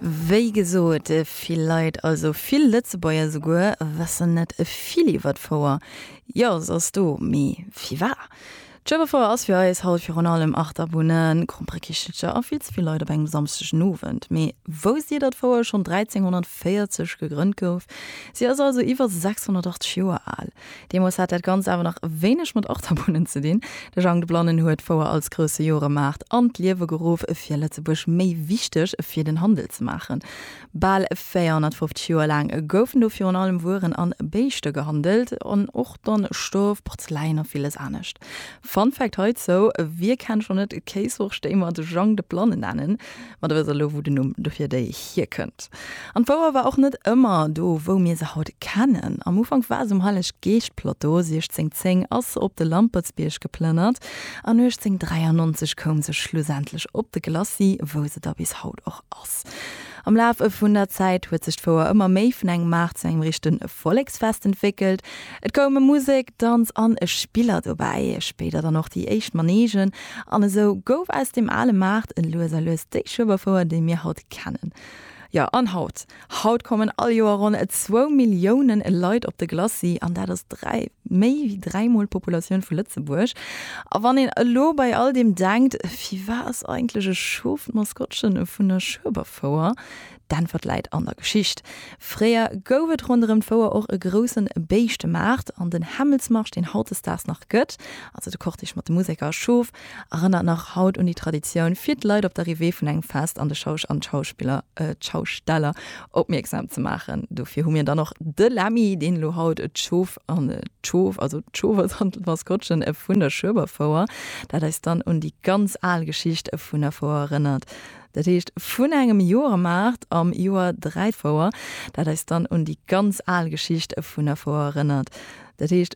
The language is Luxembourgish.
Wéi gesot, vill Leit, also vill Lëtzebuerger souguer, wëssen net vill iwwer d'Fouer. Jo, se ass do, mee firwat? D'Schueberfouer ass fir eis haut virun allem Achterbunnen, Kromprekichelcher a vill ze vill Leit op engem Samsdegenowend. Mee wousst Dir, datt d'Fouer schonn 1340 gegrënnt gouf? Si ass also iwwer 680 Joer al. Deemools hat dat Ganzt awer nach wéineg mat Achterbunne ze dinn. De Jang de Blannen huet d'Fouer als grousse Joremaart an d'Liewe geruff, fir Lëtzebuerg méi wichteg fir den Handel ze maachen. Bal 450 Joer laang goufen do virun allem Wueren a Béischte gehandelt, an och dann Stof, Porzeläin a villes anescht. Fun Fact heizou, Wie kennt schon net d'Kéissorg déi mer de Jang de Blanne nennen? Ma da wëss der elo wou de Numm dofir déi hierkënnt. An d'Fouer war och net ëmmer do wou mir se haut kennen. Am Ufank war se um Heileg-Geescht-Plateau, 1610 ass se op de Lampertsbierg geplënnert an 1893 koum se schlussendlech op de Glacis wou se da bis haut och ass. Maarz. Am Laf vun der Zäit huet sech d'Fouer ëmmer méi vun engem Maart zu engem richte Volleksfest entwéckelt. Et koume Musek, Danz an Spiller dobäi, spéider dann och déi éischt Manegen an esou gouf aus dem ale Maart lues a lues déi Schueberfouer, déi mir haut kennen. Jo, an haut? Haut kommen all Joer ronn zwou Milliounen Leit op de Glacis an dat ass dräi méi wéi dräimol d'Populatioun vu Lëtzebuerg. A wann een elo bei all deem denkt, firwat ass eigentlech e Schof d'Maskottchen vun der Schueberfouer? D'Äntwert läit an der Geschicht. Fréier gouf et ronderëm d'Fouer och e groussen Béischtemaart an den Hämmelsmarsch, deen hautdesdaags nach gëtt, also de Cortège mat de Museker a Schof, erënnert nach haut un déi Traditioun, fir d'Leit op d'Arrivée vun engem Fest an de Schausch an d'Schausteller opmierksam ze maachen. Dofir hu mir dann och de Lemmy, deen elo haut d'Schof an d'Schof, also d'Schofer dann d'Maskottchen vun der Schueberfouer, dat eis dann un déi ganz al Geschicht vun der Fouer erënnert. Dat heescht vun engem Joermaart am Joer dräi d'Fouer, dat eis dann un déi ganz al Geschicht vun der Fouer erënnert, dat heescht,